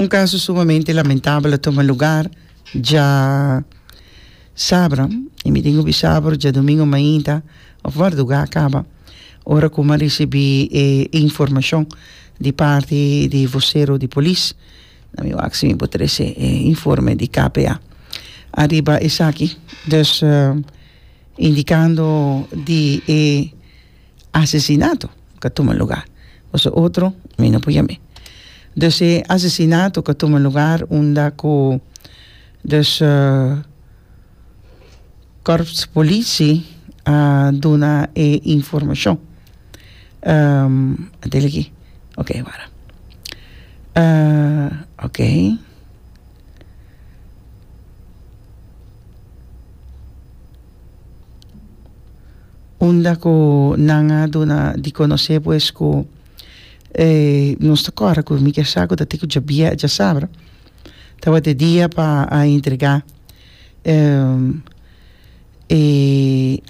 Un kaso sumamente lamentabel a tuma lugar dja sabra, e mi tin obi sabra o djadumingu mainta of marduga a kaba, ora ku a risibi e informashon di parti di vosero di polis, a mi wak si mi por trese e informe di KPA ariba esaki, dus indikando di e. Asesinato ka tuma lugar pasobra otro mi no por yam'e. Dus e asesinato ka tuma lugar unda ku dus kòrps polici a duna e informashon. Atel aki, ok wara ok Unda ku nan a duna di konosé pues ku e nos ta kòrda ku mi ke sa ku ta tin ku djabia dja sabra tabata e dia pa a entregá e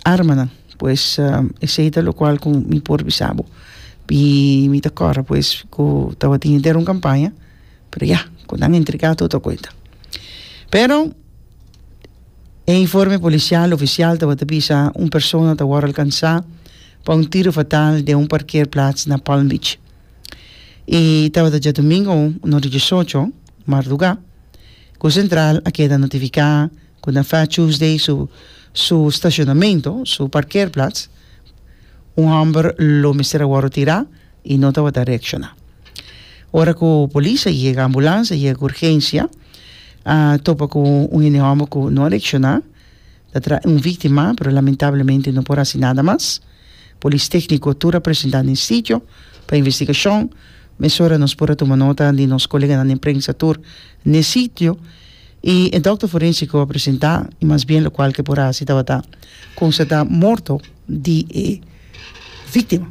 armanan pues esei ta lokual ku mi por bisa bo i mi ta kòrda pues ku tabatin henter un kampaña pero ya ku nan entregá tur ta kuenta pero E informe policial oficial tabata bisa un persona ta wor alcansa pa un tiro fatal den un parkeerplaats na Palm Beach. E tabata djadomingo no di diesocho marduga cu Centraal a keda notifica cu na Fat Tuesday su su stacionamento, su parkeerplaats, un homber lo mester a wor retira. y no tabata reacciona. Ora cu polis a yega, ambulans a yega cu urgencia, a topa cu un hende homber cu no a reacciona, ta traha un victima, pero lamentablemente no por haci nada mas. Polis tecnico tur a presenta den sitio pa investigacion. Mesora nos por a tuma nota di nos coleganan den prensa tur n'e sitio y e dokter forensico a presenta y mas bien locual cu e por a haci tabata constata morto di e victima.